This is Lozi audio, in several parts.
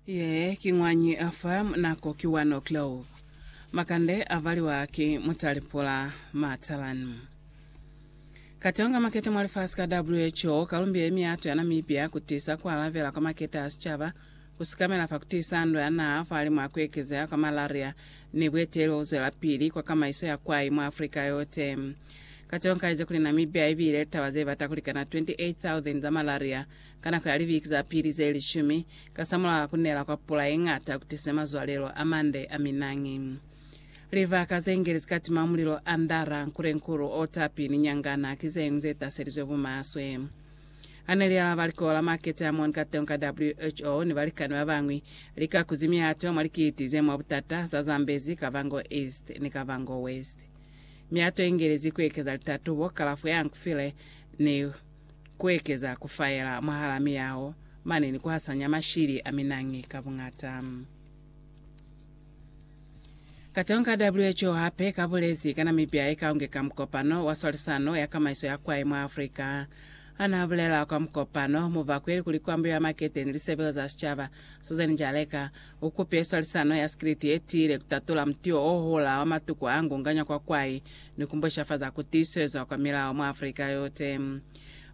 Ye ki ñwañi a fa nako ki wa Norclog. Makande a valiwa ki mutalipula Matalan. Katonga makete mwa lifasi ka WHO ka lumbile miyato ya Namibia ku tisa ku alabela kwa makete a sicaba, ku sikamela fa ku tisa ndwa ya naha fahalimu a ku ekezeha kwa malaria ni bueteli bo bu zwelapili kwa kamaiso ya kwai mwa Africa yote. Katonga a ize kuli Namibia i bile litaba ze bata ku likana 28,000 za malaria Ka nako ya libiki za pili ze lishumi kasamulaho ka ku nela kwa pula ye ñata ku tisize mazwalelo a mande a minañi, livaka ze ngeli zika tima mulilo andara nkulenkulu o tapi ni nyangana ki ze ñwi ze taselizwe bumaswe. Ha ne li alaba likoho la makete a moni kateñi ka WHO ni balikani ba bañwi, li ka kuzi miato mwa likiti ze mwa butata za Zambezi, Kavango East ni Kavango West. Miato ye ngelezi ku ekeza litatubo, kalafo ya nkufile, ni. kuekeza kufaela mwahala miyaho mane ni kuhasanya mashili a minangi ka buñata. Katong ka WHO hape kabulezi ka Namibia ikaunge ka mukopano wa swalisano ya kamaiso ya kwai mwa Afrika. Hanaabulela kwa mukopano, mubakweli kuli kwambo ya makete ni lisebelo za sicaba, Susan Njaleka, ukupile swalisano ya sikiliti yetiile kutatola mutio ohola wa matuku aangunganywa kwa kwai, ni kumbushafaza kutiswezwa kwa milao mwa Afrika yote.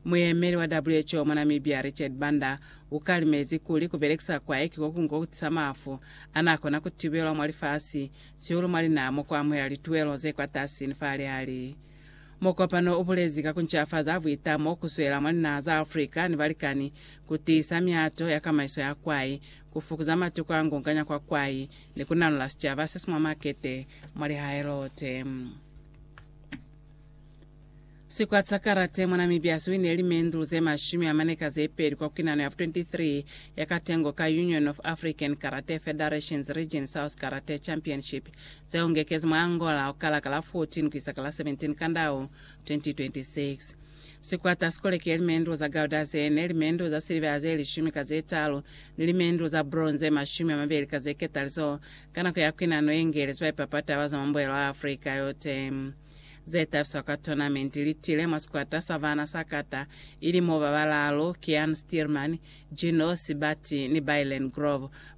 Muyemeli wa WHO mwa Namibia, Richard Banda, ukalimezi kuli kubelekisa kwae ki kokungo kutisa mafu anakona kutibelwa mwa lifasi, sihulu mwa linaha mokwamuhela lituelo zekwatasi ni falihali. Mukopano ubulezi ka kuncafaza buita mo kuswela mwa linaha za Afrika ni balikani kutiisa mihato ya kamaiso ya kwai ku fukuza matuku a ngonganya kwa kwai, ni ku nalola sicaba se si mwa makete mwa lihaelo te. Sikwati sa karate mwa Namibia si winile limendulu ze mashumi a mane ka ze peli kwa kuinano ya 23 ya katengo ka Union of African Karate Federations Region South Karate Championship ze ungekezi mwa Angola ukala ka la 14 ku isa ka la 17 Kandau 2026. Sikwata si koleke limendlo za gauda ze ne, limendlo za silivera ze lishumi ka ze talu, ni limendlo za bronze ze mashumi a mabeli ka ze ketalizo, ka nako ya kwinano ye ngelezi ba ipapata ba zwa mwa mbuelo wa Afrika yote. Ze tabiswa kwa tonamenti li tile mwa sikwata sa bana sa kata, ili mo ba balaalu, Keanu Stearman, Gino Sibatti, ni Bailyn Grove,